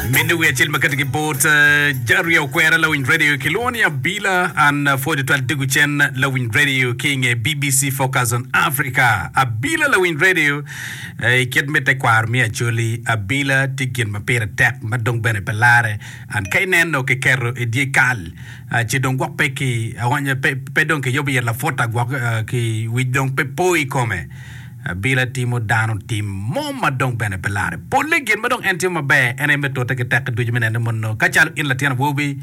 Miniwi acel ma kati ki bot eh, Jaria Okwera lawiny radio ki lwongo ni Abila an eh, pwod twal digu cen lawiny radio ki inge BBC Focus on Africa. Abila lawiny radio eh, i kit me tekwaro mi Acholi Abila ti gin ma pire tek ma dong bene pe lare an ka ineno ki keto i dye kal eh, ci dong gwok pe ki aonyo pe, pe dong ki yobo iye laput agwok eh, ki wic dong pe po i kome. Abila timo dano tim mo ma dong bene pe larre polle. Gin ma dong en timo maber en aye me tute ki tekke ducu me neno ni mono ka calo in latin awobi,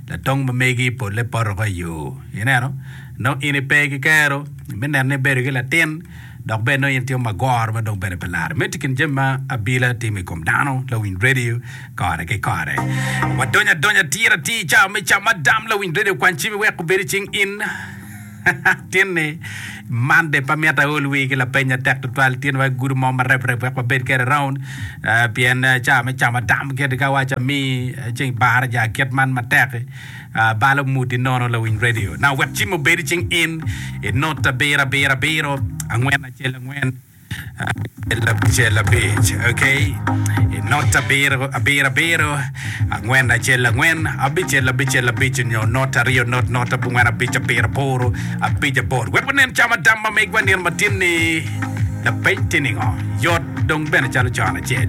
latong ma megi polle pot woko i yo. Ineno? Nongo in ipe ki kero me neno ni ibedo ki latin dok bene nongo in timo magoro ma dong bene pe larre. Meno tye i kin jami ma Abila timo i kom dano, lawiny redio kore ki kore. Wadonyo adonya atir atir i cawa me Camadam, lawiny redio kwan cimi wek obed i cing in. Tin ni, Monday pe amito aol wi ki lapeny matek tutwal. Tin wek gudo mo mareb reb wek wabed kede round. Ah, pien ah, caa me camo tam kiti ka waco ami ah, ceng bara ja kit man matek. Ah, balo muti nono lawiny radio. Na wek cim obedi cing in, inot abiro abiro abiro, angwen acel angwen. Cel abicel abic, ok? Not abiro, abiro abiro, angwen acel angwen, abicel abicel abic onyo not aryo not not abongwen abic abiro aboro abic aboro. Wek wanen cam adam ma megwa nino matin ni lapeny tye ningo? Yot dong bene calo con acel.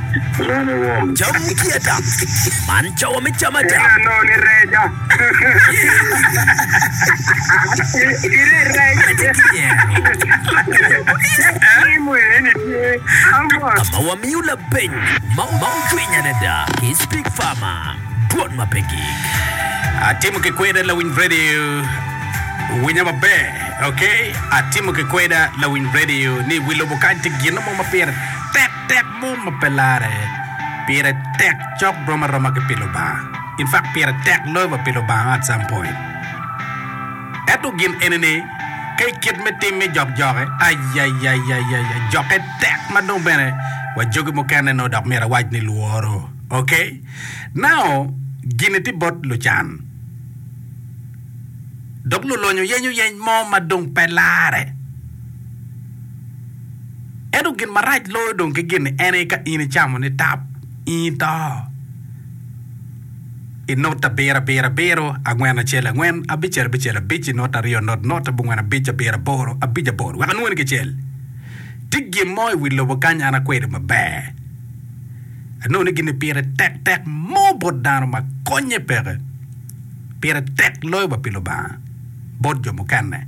Cam me kieta. Man cawa me cam ada. Ka ma wamiyo labeng ma ocwiny adada ki Speak Farmer, dwon ma pe gik. Atimo ki kweda lawiny radio winya maber okay atimo ki kweda lawiny radio ni wi lobo kany tye gino mo ma pire tek. tek mo ma pe larre. Pire tek cok rom aroma ki pi Lubanga. In fact, pire tek loyo wa pi Lubanga at some point. Ento gin eni ni, ka i kit me tim me jok joke, ayayayayaya, joke tek ma dong bene wa jogi mukene nongo dok myero awac ni lworo. Ok? Now, gini tye bot lucan. Dok lulonyo yenyo yeny mo ma dong pe larre. Ento gin marac loyo dong ki gin-ni en aye ka in icamo ni tap, in ito. I not abiro abiro abiro, angwen acel angwen, abicel abicel abic, i not aryo not not, abongwen abic abiro aboro, abic aboro, wek anwoni kicel. Tye gin mo i wi lobo kany an akwedo maber. Anongo ni gin-ni pire tek tek mo bot dano ma konnye peke. Pire tek loyo wa pi Lubanga bot jo mukene.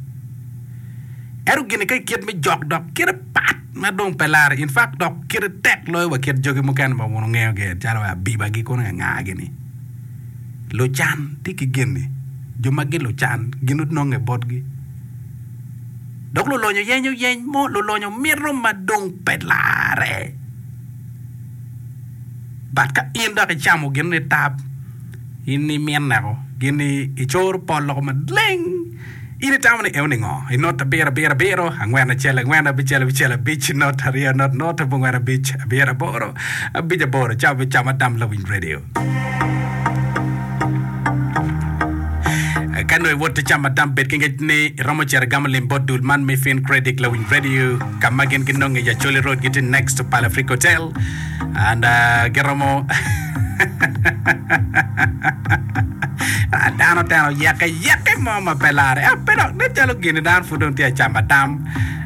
Ento gin-ni ka kit me jok dok kite pat ma dong pe larre, in fact dok kite tek loyo wa kit jogi mukene ma wun wungeyo gi en calo abibagi kono ngangagi ni lucan tye ki gin-ni, jo ma gin lucan gin ononge botgi. Dok lulonyo yenyo yeny mo, lulonyo mito ma dong pe larre. But ka in dok icamo gin-ni tab, in imine ko, gin-ni icoro pol loko maleng. In itamo ni eo ningo? I not abiro, abiro, abiro, angwen, acel, angwen, abicel, abicel, abic, not aryo, not, not, abongwen, abic, abiro, aboro, abic, aboro, cam, abic, cam, adam, lawiny radio. Ka nongo iwot icamo adam, bed ki ngec ni iromo cito igamo lim bot dul man me Fin Credit, lawiny radio, ka ma gin ginonge i Acholi Road, gitye next to Pala Freak Hotel. and giromo dano oteno yeke yeke mo ma pe lare ah, pe dok nen calo gini dano pud dong tye acama dam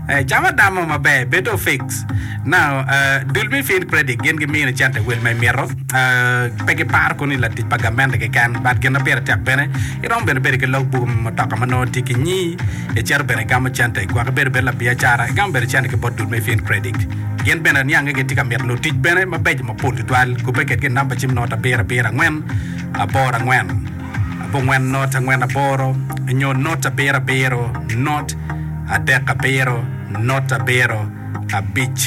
Eh, cama dam mo maber bedo fix now eh, dul me field credit gin gimino cente wel ma imito Eh, pe giparo koni latic pa gamente keken but gin ma pire tek bene iromo bene bedo ki log buku me mutoka ma nongo tye ki nyi icito bene igamo cente gwok ibedo bene labiacara igamo bene cente ki bot dul me field credit Gin bene aniange gitye ka mito nongo tic bene mabeco mapol tutwal. Kubbe kedgi i namba cim not abiro abiro angwen aboro angwen abongwen not angwen aboro nyo not abiro abiro not adek abiro not abiro abic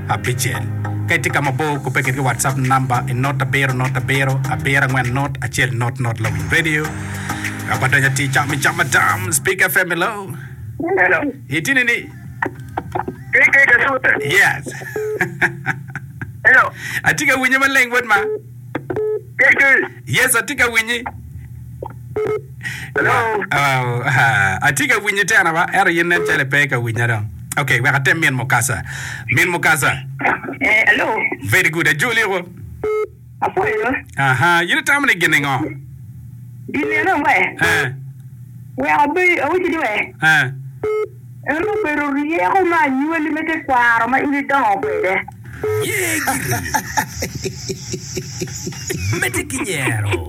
abicel. Ka itye ka mabor kubbe kedgi WhatsApp namba i not abiro not abiro abiro angwen not acel not not Lawiny Radio. Ka badonyo atir cam i cam madam Speak FM hello. Hello. Itini ni Pig pig asute. Yes. Hello. Atye ka winyi maleng bot ma. Pig pig. Yes, atye ka winyi. Hello. Oh, ah, atye ka winyi tena ba. Ero yin nen cale pe ka winya dong. Okay, wek atem min mukasa. Min mukasa. Eh, hello. Very good. Ajoli ko. apwonyo. Aha, in itamo ni gin ningo? Gin meno aye, Eh, wek abed, awacci ni wek eh, en obedo ryeko ma anywali me tekwaro ma in idongo kwede. Ye giri. Medde ki nyero.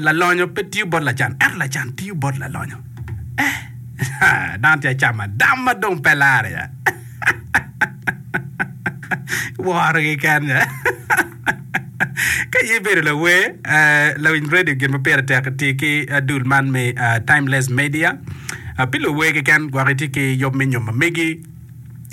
Lalonyo pe tiyo bot lacan, ento lacan tiyo bot lalonyo. Dano tye acam adam ma dong pe lar ya. Woro keken ya. Ka in ibedo lawer, lawiny radio gin ma pire tek iti ki dul man me Timeless Media. Pi luwer keken gwok itye ki yub me nyom ma megi.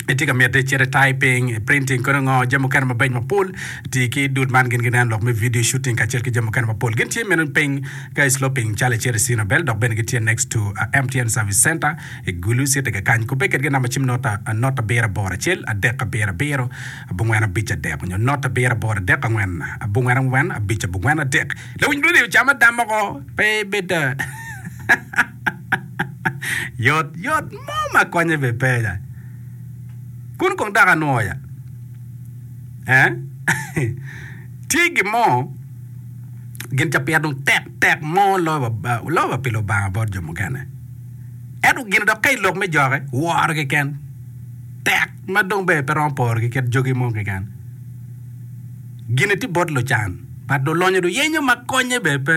itye ka mite cite typing, printing kodi ngo jami mukene mabeco mapol ti ki dud man gin ginen lok me video shooting kacel ki jami mukene mapol gin tye meno piny ka i sloping calo icito i Cinabel dok bene gitye next to uh, MTN service center i Gulu city kakany kubbe kedgi namba cim nota uh, not abiro aboro acel adek abiro abiro abongwen abic adek onyo not abiro aboro adek angwen abongwen angwen abic abongwen adek lawiny dwoni ocama dam oko pe bed uh, Yot yot mo ma konye bene penya. Kun kong dok anwo ya. Eh? Tye gin mo, gin ca pire dong tek tek mo loyo ba loyo ba pi Lubanga bot jo mukene. Ento gin dok ka i lok me jokke, woro keken. Tek ma dong bene pe romo poro ki kit jogi mo keken. Gin-ni tye bot lucan, but lulonyo luyenyo ma konye bene pe.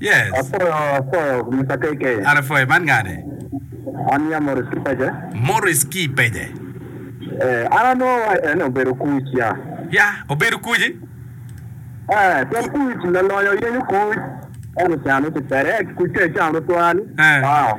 Yes. Apwoyo apwoyo Mister KK. An apwoyo. Man ngani? An ya Maurice Kipeje. Maurice Kipeje. Eh, an anongo wa en obedo kuc ya. Ya, obedo kuci? Eh, pien kuc lalonyo yenyo kuc. Eno can uti pede, kuc ka icamo twal. Eh. Wow.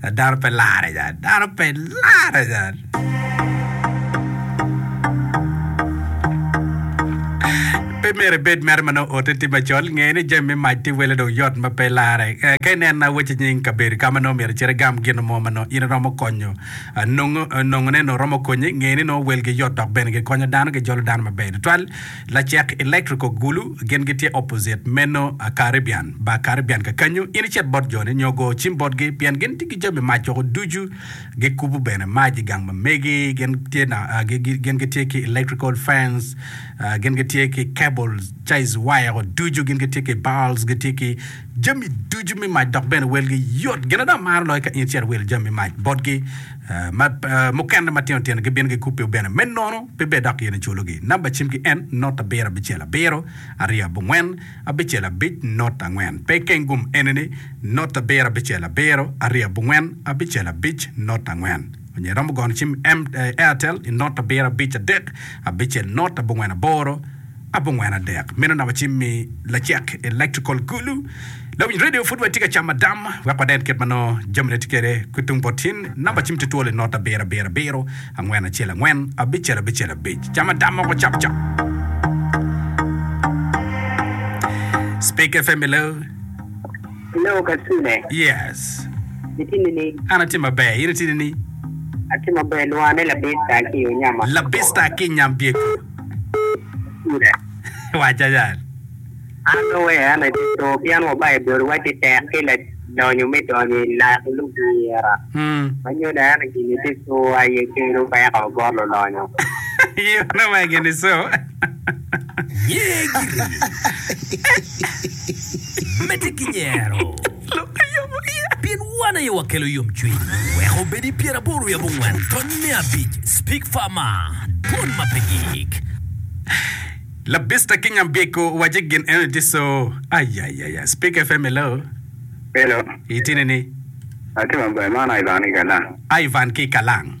Dano pe larre nya, dano pe larre nya. Pe myero ibed mere ma nongo ote tye macol. Nge ni jami me mac tye wele dong yot ma pe larre. Eh, Ka ineno awaci nying kabedo ka ma nongo myero icit igam gin mo ma nongo in iromo konyo, ah, nongo, nongone nongo romo konyi, nge ni nongo welgi yot dok bene gikonyo dano, gijolo dano maber tutwal. Lacek electrical gulu gin gitye opposite meno a Caribbean ba Caribbean kakanyu in icit bot joni nyo go cim botgi pien gin tye ki jami mac woko ducu gikubu bene mac igang ma megi gin tye na gin gitye ki electrical fans gin gitye ki cables ties wire woko ducu gin gitye ki bulbs gitye ki jami ducu me mac dok bene welgi yot. Gin ada amaro loyo ka in icito wilo jami me mac botgi, ma mukene matino tino gibino gikubbi bene. Me nono, pe bed dok in iculogi. Namba cimgi en not abiro abicel abiro aryo abongwen abicel abic not angwen. Pe ikengum enini, not abiro abicel abiro aryo abongwen abicel abic not angwen. Onyo iromo gono cim Airtel i not abiro abic adek abicel not abongwen aboro. abongwen adek. Meno na wacim mi lacek electrical kulu. Lawiny radio pud watye ka camo adam wek waden kit ma nongo jami ne tye kede ki tung bot tin. Namba cim tye twol inot abiro abiro abiro angwen acel angwen abicel abicel abic. Cam adam moko cap cap. Speak FM hello. Hello Kasule. Yes. Itini ni? An atye maber. In itini ni? Atye maber. Lwane labista ki yo nyama. Labista ki nyam byeko. Wac acan. An dong wek an ati co pien wa Baibul wacci tek ki ladonyo me donyo i lak lugira. Ma nyuto ento gini ti co aye kelu peko bot lulonyo. Nyuto ma gini co. Nye giri. Mete ki nyero. lok ki yomo iye. Pien wan aye wakelo yomcwiny. Wek obed i pyeraboro wiye abongwen tony me abic, Speak Farmer, dwon ma pe gik. Labista ki nyambiko wace gin eno ni tye co. Ayayaya. Speak FM hello. Hello. Itine ni? Atye maber, man Ivan ki Kalang. Ivan ki Kalang.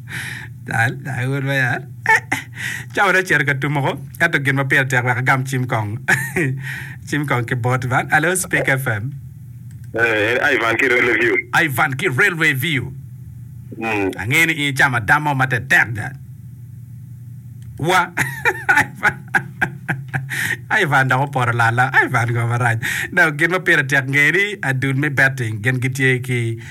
Cawa dong ocito ka tum oko ento gin ma pire tek wek agam cim kong cim kong ki bot man. Hello Speak FM. Eh, Ivan ki Railway View. Ivan ki Railway View. Mm. Angeyo ni in icamo adam mo matetek da. Wa. Ivan. Ivan dok oporo lala. Ivan ngo marac. Dok gin ma pire tek ngeni adul me betting gin gitye ki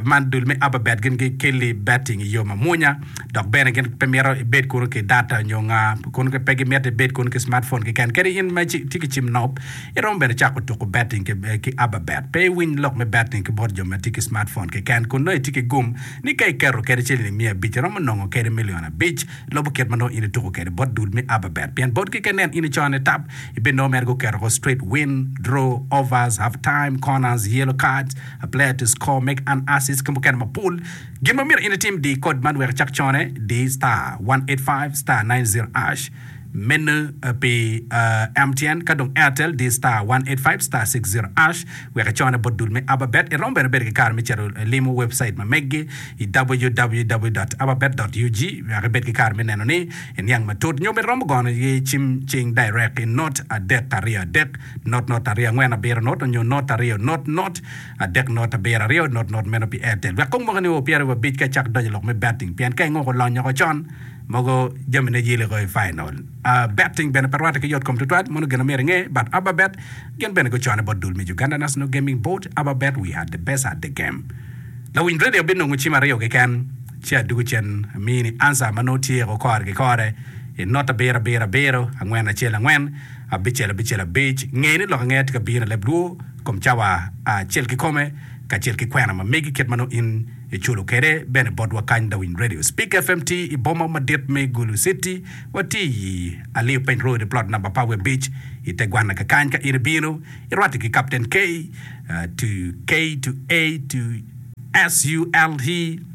Man dul me ababet gin gikeli betting i yo mamwonya dok bene gin pe mito ibed kunu ki data nyo nga kun pe gimito ibed kunu ki smartphone keken kadi in ma tye ki cim nop iromo bene cako tuku betting ki ki ababet pe iwiny lok me betting ki bot jo ma tye ki smartphone keken kun nongo itye ki gum ni ka iketo kede ciling miya abic iromo nongo kede milion abic lubo kit ma nongo in ituku kede bot dul me ababet pien bot gi ka inen in ico ni tap ibinongo mere guketo ko straight win, draw, overs, half time, corners, yellow cards. A player to score, make an assist ki mukene mapol. Gin ma myero in itim, di kod man wek icak cone, di star one eight five star nine zero ash. Meno pi MTN ka dong Airtel di star one eight five star six zero ash wek icone bot dul me Ababet. Iromo bene bedo ki kare me cito limo webcite ma meggi i www dot ababet dot ug wek ibed ki kare me neno ni iniang matut nyo bene iromo gono iye cim cing direct i note adek aryo adek. not not aryo angwen abiro not onyo not aryo not not adek not abiro aryo not not meno pi Airtel wek kong moka ni o pyera wiwa abic ka icako donyo lok me betting pien ka ingo ko lonyo ko con mogo jami ne yili ko i final betting bene pe rwate ki yot kom tutwal mono gin na myero inge but ababet gin bene gu cone bot dul me Uganda National Gaming Board ababet we are the best at the game lawiny radio bi nongo cim aryo keken ci adugu cen amini answer ma nongo tye ko kore ki kore i not abiro abiro abiro angwen acel angwen. abicel abicel abic, nge ni lok angeya tye ka bino i leb lwor kom cawa acel kikome kacel ki kwena ma megi kit ma nongo in iculo kwede bene botwa kany Darwin Radio Speak FM tye i boma madit me Gulu City watye i Aliyo Peng Road plot number pa Webic i te gwanna ka kany ka in ibino irwate ki Captain K to K to A to SULT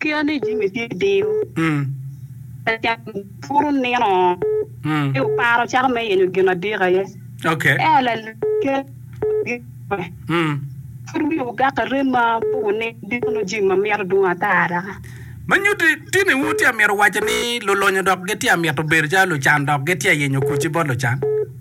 Kit ma ni jami tye diyo, puro nino ci wuparo cako me yenyo gin adik aye. Ento lalek pud wiye ogak ki rem ma pe wuneno diko nongo jami ma mito dwong ata da. Ma nyutti tini wu tye amito waco ni lulonyo dok gitye amito bedo calo lucan dok gitye ayenyo kuc-ci bot lucan?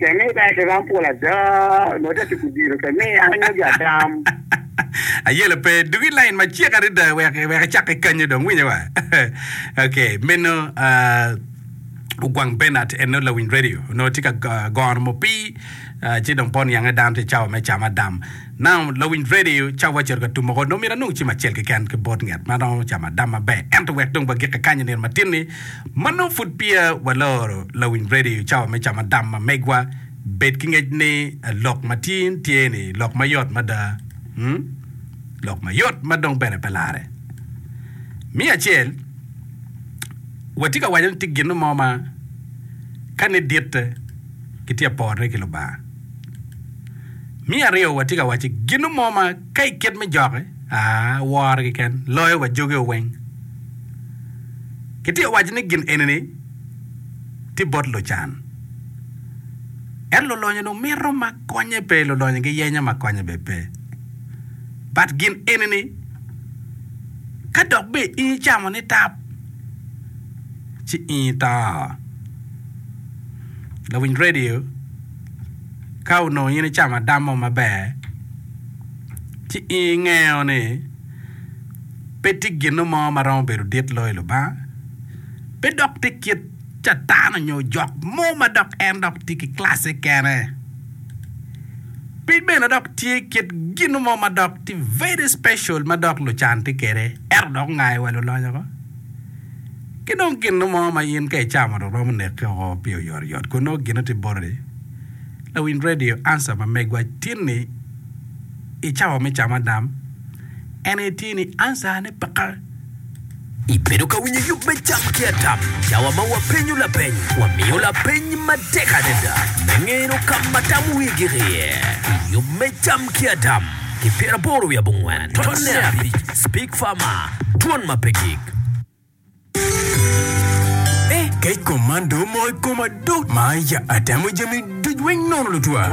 Ceng ni bene ki rom pol ada, nongo te tuku diro te mi an nyogi atam. Ayelo pe, dug i lain macek adada wek wek icakke kanyo dong, winyo wa. ok, meno uh, ogwang Bernard en nongo lawiny radio, nongo tye ka go- gono mupii uh, ci dong pol niange dano tye cawa me camadam. Now, lawiny redio, ca wacito ka tum oko, dong myero anong cim acel keken ki bot nget ma romo camo adam maber. Ento wek dong wagikke kany i nino matin-ni, ma nongo pud peya waloro lawiny redio cawa me camo adam ma megwa, bed ki ngec ni lok ma tin tye ni lok ma yot mada, hmm, lok ma yot ma dong bene pe larre. Miya acel, watye ka waco ni tye gin mo ma ka ni ditte, kitye ka porone ki Lubanga. Me aryo, watye ka waco gino mo ma ka i kit me jokke, aa, woro keken loyo wa joge weng. Kitye ka waco ni gin eni-ni tye bot lucan. Ento lolonyo dong mito ma konye pe, lolonyo giyenyo ma konye bene pe. But gin eni-ni, ka dok bene in icamo nitap, ci in ito. lawiny radio ka onongo in icamo adam mo maber ci ingeyo ni pe tye gino mo ma romo bedo dit loyo Lubanga pe dok tye kit catan onyo ojok mo ma dok en dok tye ki classe kene pe bene dok tye kit gino mo ma dok tye very special ma dok lucan tye kwede ento dok ongayo wa luloyo ko. Ki dong gin mo ma in ka icamo dong romo neke woko pi oyotoyot kun nongo gine tye boti. Lawiny redio, Answer, ma megwa tin-ni i cawa me camo adam en aye tye ni Answer ne peke. Ibedo ka winyo yub me cam ki adam? I cawa ma wapenyo lapeny, wamiyo lapeny matek adada me ngeno ka ma tam wigi iye. I yub me cam ki adam ki pyeraboro wiye abongwen tonne abic, Speak Pharma, twon ma pe gik. Eh kec kom man do omoko i koma do ma ya atemo jami duc weng nono lutwa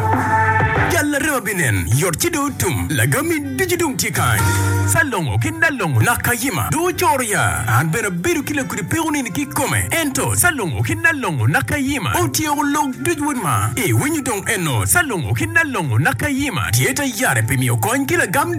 Jal arema binen yot ci do otum lagami ducu dong tye kany Salongo ki Nalongo nak kayima do ocoro ya an bene abedo ki lakudi peko nini ki kome ento Salongo ki Nalongo nak kayima otyeko lok duc wod ma iwinyo dong eno Salongo ki Nalongo nak kayima tye ta yare pi miyo kony ki lagam